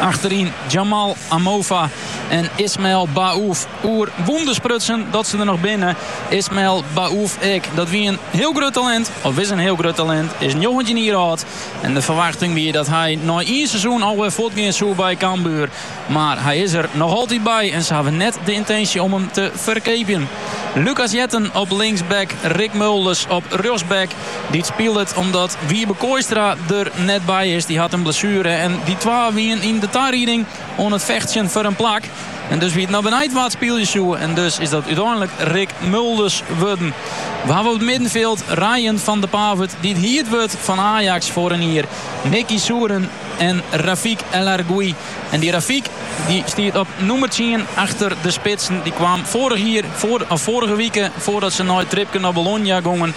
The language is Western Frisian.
Achteryn Jamal Amofa en Ismael Baouf. Oer wûnders sprutsen dat se der noch binne. Ismael Baouf ek. Dat wie in hiel grut talint. Of is in hiel grut talint. Is 19 jier âld. En de ferwachting wie dat hy nei ien seizoen alweer fuortgean soe by Cambuur. Mar hy is der noch altyd by. En se hawwe net de yntinsje om him te ferkeapjen. Lucas Jetten op linksback. Rik Mulders op rjochtsback. Dy't spilet omdat Wiebe Kooistra der net by is. Dy hat in blessuere en dy twa wienen yn de tarieding oan it fechtsjen foar in plak. En dus wie it noch beneit wa't spylje soe en dus is dat úteinlik Rik Mulders wurden. We hawwe op it middenfjild Ryan van de Pavert dy't hierd wurdt fan Ajax foar in jier, Nicky Souren en Rafik El Arguioui. En dy Rafik dy stiet op nûmer tsien achter de spitsen. Dy kwam foarich jier, foar, of foarige wike foardat se nei it tripke nei Bologna gongen